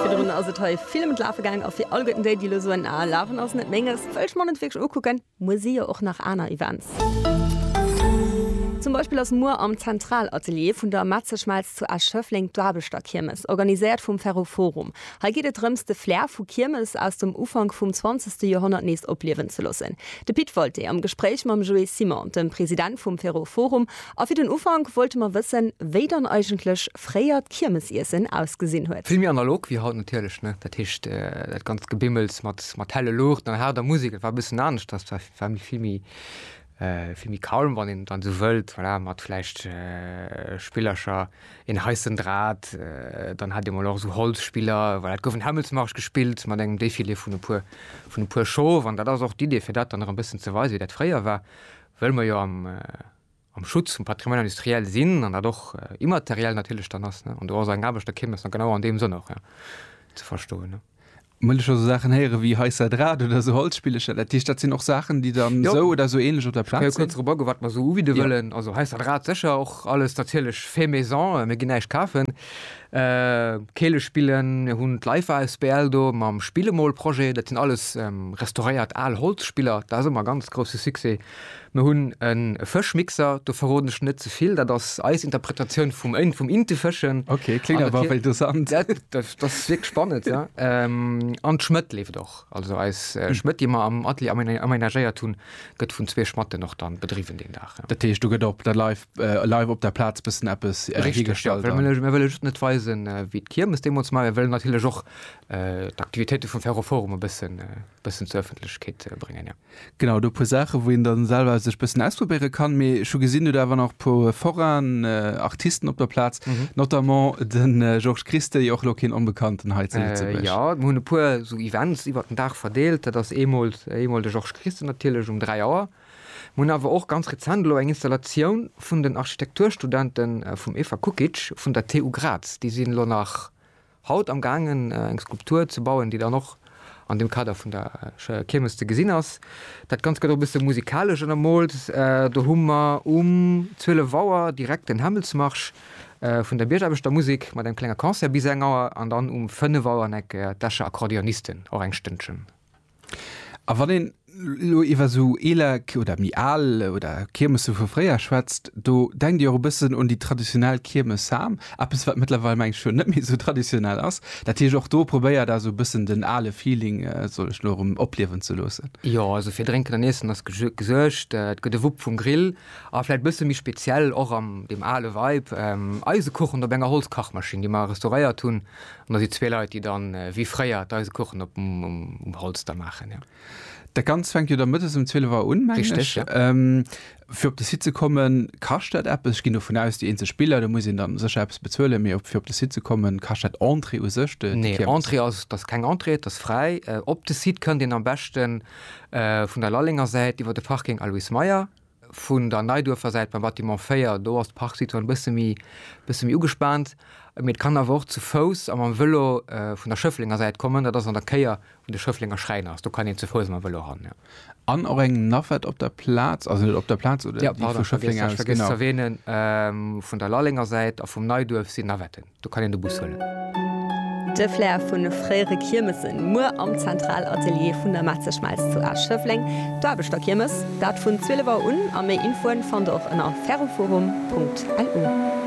Virdrun ass et hei vill ëm d'Lafe gaang a fir alleguerten déi, déi elo soen, Ah, Lafen ass net Menges, wëll ech mer net wierklech ukucken, muer si jo och nach aner Events. Zum Beispill ass muer am Zentralatelier vun der Metzeschmelz zu Esch-Schëffleng d'Aarbechterkiermes, organiséiert vum Ferroforum. Hei geet et drëms, de Flair vu Kiermes aus dem Ufank vum zwanzegste Joerhonnert nees opliewen ze loossen. De Pit Wolté am Gespréich mam Joé Simon, dem President vum Ferroforum, A fir den Ufank wollte mer wëssen, wéi dann eigentlech fréier d'Kiermesiessen ausgesinn huet. Vill méi analog wéi haut natierlech, ne. Dat heescht, dat ganzt Gebimmels mat, mat helle Luuchten an haarder Musek, dat war e bëssen anescht. Dat war, war méi, vill méi, vill méi calm, wann een, wann een esou wëllt, voilà, mat vläicht Spillercher, een heissen Drat, dann hat ee mol och esou Holzspiller, voilà. Et gouf en Hämmelsmarsch gespillt mat engem Défilé vun e puer, vun e puer Showen. An dat ass och d'Idee, fir dat dann nach e bëssen ze weisen, wéi dat fréier war. Well mer jo am Schutz vum Patrimoine industriel sinn an dat och immateriell natierlech dann ass, an do ass eng Aarbecht erkiermes dann genau an deem Sënn och ze verstoen. Well ech esou Saachen héiere wéi hei Sadrat oder esou Holzspillecher, dat heescht, dat sinn och Saachen, déi dann esou oder esou ähnlech op der Plaz sinn? Ech ka jo kuerz drop agoen, wat mer esou ubiede wëllen. Also hei Sadrat sécher, och alles natierlech fait maison, mir ginn näischt kafen. Keele spillen. Mir hunn d'Life asbl do mam Spillemol-Projet. Dat sinn alles restauréiert al Holzspiller. Dat ass ëmmer e ganz grousse Succès. Mir hunn e Fëschmixer, do verroden ech net ze vill. Dat ass eis Interpretatioun vum Intefëschen. Ok, kléngt awer wéi interessant. Dat ass wierklech spannend, jo. An d'Schmëtt leeft och. Also eis Schmëtt, déi mer am Atelier amenagéiert hunn, gëtt vun zwee Schmatten och dann bedriwwen deen Dag. Dat heescht, do gëtt op der Life äh, live op der Platz bëssen eppes äh, hiergestallt. Ja, mir wëlle just net weisen, äh, wéi d'Kiermes demols mei wëllen natierlech och äh, d'Aktivitéite vum Ferroforum e bëssen äh, bëssen zur Ëffentlechkeet äh, bréngen. Ja. Genau, do puer Saache, wou een dann selwer sech bëssen ausprobéiere kann, mee scho gesinn du dawer nach puer Foraen, äh, Artisten op der Platz, mhm. notamment den äh, Georges Christe, jo och lo keen onbekannten hei ze äh, Ja, hunn e puer so Events iwwer den Dag verdeelt, dat ass eemol eemol de Georges Christe natierlech um 3 Auer. Mir hunn awer och ganz rezent elo eng Installatioun vun den Architekturstudente vum Eva Kukic vun der TU Graz. Déi sinn elo nach haut am gaangen eng Skulptur ze bauen, déi dann och an dem Kader vun der Kiermes ze gesinn ass. Dat Ganzt gëtt och e bësse musikalesch ënnermoolt. Do hu mer um 12 Auer direkt den Hämmelsmarsch vun der Biergaarbechter-Musek mat engem klenge Concert bis eng Auer an dann um 5 Auer an eng Eck d'Escher Akkordeonisten och eng Stënnchen. A wann een elo iwwer esou eeler oder méi al oder Kiermesse vu fréier schwätzt, do denkt ee och e bëssen un déi traditionell Kiermes Sam, eppes wat mëttlerweil mengen ech net méi esou traditionell ass. Dat heescht och do probéiert der esou e bëssen den ale Feeling, soll ech elo erëm, opliewen ze loossen. Jo, also fir Drénken an Iessen ass gesuergt. Et gëtt e Wupp vum Grill a vläicht e bësse méi speziell och an deem ale Vibe, Eisekuchen op enger Holzkachmaschinn, déi mer restauréiert hunn. An da si zwee Leit, déi dann, wéi fréier, d'Eisekuchen op um Holz da maachen, jo. Dat Ganzt fänkt jo da mëttes um 12 Auer un, mengen ech. Richteg, jo. Fir op de Site ze kommen, kascht dat eppes? Ech ginn dovun aus, déi eenzeg Biller, do muss een dann sécher eppes bezuelen, mee fir op de Site ze kommen, kascht dat Entrée u sech, déi Kiermes? Nee, Entrée ass, dat ass keng Entrée, dat ass fräi. Op de Site kënnt een am beschte vun der Lallenger Säit iwwer de Parking Alois Meyer, Vun der Neiduerfer Säit beim Bâtiment 4, do ass d'Parksituatioun e bësse méi, bësse méi ugespaant. Mee et kann awer och zu Fouss a mam Vëlo vun der Schëfflenger Säit kommen. Dat ass an der Kéier, wou de Schëfflenger Schräin ass. Do kann een zu Fouss a mam Vëlo ran, jo. An och eng Navette op der Plaz, also net op der Plaz, oder déi vu Schëffleng aus, genau. Jo, pardon, ech hat vergiess ze erwähnen, vun der Lallenger Säit a vum Neiduerf sinn Navetten. Do kann een de Bus huelen. De Flair vu fréiere Kiermesen, muer am Zentralatelier vun der Metzeschmelz zu Esch-Schëffleng, d'Aarbechterkiermes, dat vun 12 Auer un a méi Infoen fannt der och ënner ferroforum.lu.